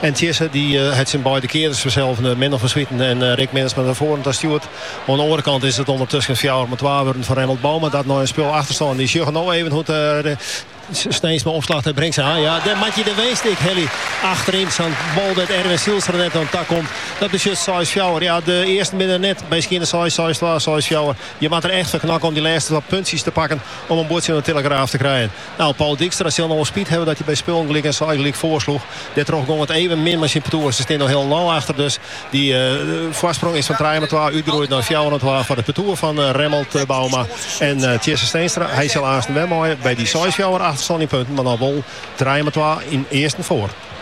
En Tjisse dy hat syn beide kearders ferselvend Menno van Swieten en Rick Mensma nei foaren ta stjoerd. Oan de oare kant is it ûndertusken fjouwer mei twa wurden foar Remmelt Bouma dat nei in spul achterstân. Wy sjogge no even hoe't Steenstra opslacht en bringt se ha. Ja, dêr moat je de winst ek helje achteryn. Sa'n bal dêr't Erwin Zijlstra net oan takomt. Dat betsjut seis fjouwer. Ja, de earsten binne der net by skjinne. Seis, seis twa, seis fjouwer. Je moat der echt foar knokke om dy lêste twa puntsjes te pakken om in buordsje oan de tillegraaf te krijen. Nou, Paul Dijkstra sil no wol spyt hawwe dat hy by spullen gelyk en seis gelyk foarsloech. Dêrtroch gong it even min mei syn partoer. Se stean noch hielendal achter, dus dy foarsprong is fan trije oan twa útgroeid nei fjouwer oan twa foar it partoer fan Remmelt Bouma en Tjisse Steenstra. Hy sil aansten wer meie by dy seis fjouwer achterstân yn punten, mar noch wol trije oan twa yn earsten foar.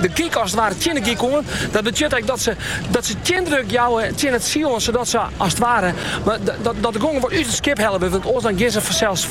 De gik as it ware tsjin de gik oan. Dat betsjut ek dat se, dat se tsjindruk jouwe tsjin it seil oan, sadat se as it ware dat de gong wat út it skip helle wurdt, want oars dan gean se fansels fal.